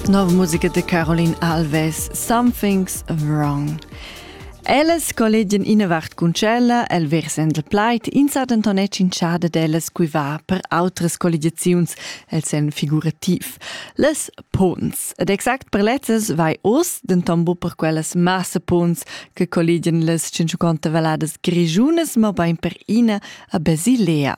Nova musica de Caroline Alves, Something's Wrong. Ellas collegian ina vart cun tschella, el versend il plaid, ins ha denton tschintschada d'ellas cui va per outras colligiaziuns, el sen figurativ. Les punts. Ed exact per lezzas vai oz, denton bu per quellas massa punts che colligian les 150 valadas grigiunas, ma bein per ina a Basilea.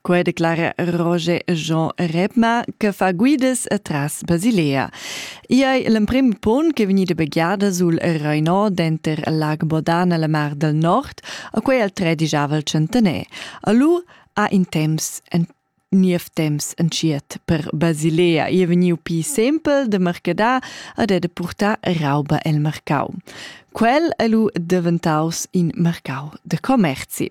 Quai declara Roger Jean Rebma che fa guidas tras Basilea. I è l'emprim pon che vegnida begliada sul Rheinau denter lag Bodan e la Mar del Nord, a quei al tredigiava il centener. Allora ha in temps en niev temps entschiet per Basilea e vegniu pi sempel de mercadar ad è de purtar rauba el mercau. Quel è lu diventaus in mercau de commerzi.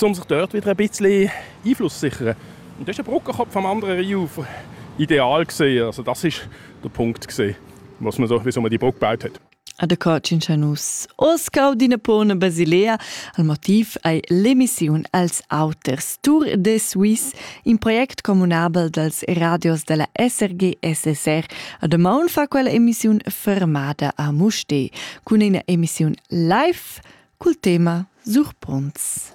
um sich dort wieder ein bisschen Einfluss sichern. Und das war ein Brückenkopf am anderen Rhein ideal gesehen. Also das war der Punkt gewesen, was man so, wieso man die Brücke gebaut hat. A de Cocincianus Oscau d'Inapone Basilea al motiv ei l'emissiun als auters Tour de Suisse, in project comunabel dals radios della SRG SSR. A de maun fa quella emissiun fermada a Muste. cun ina emissiun live cul tema Surpronts.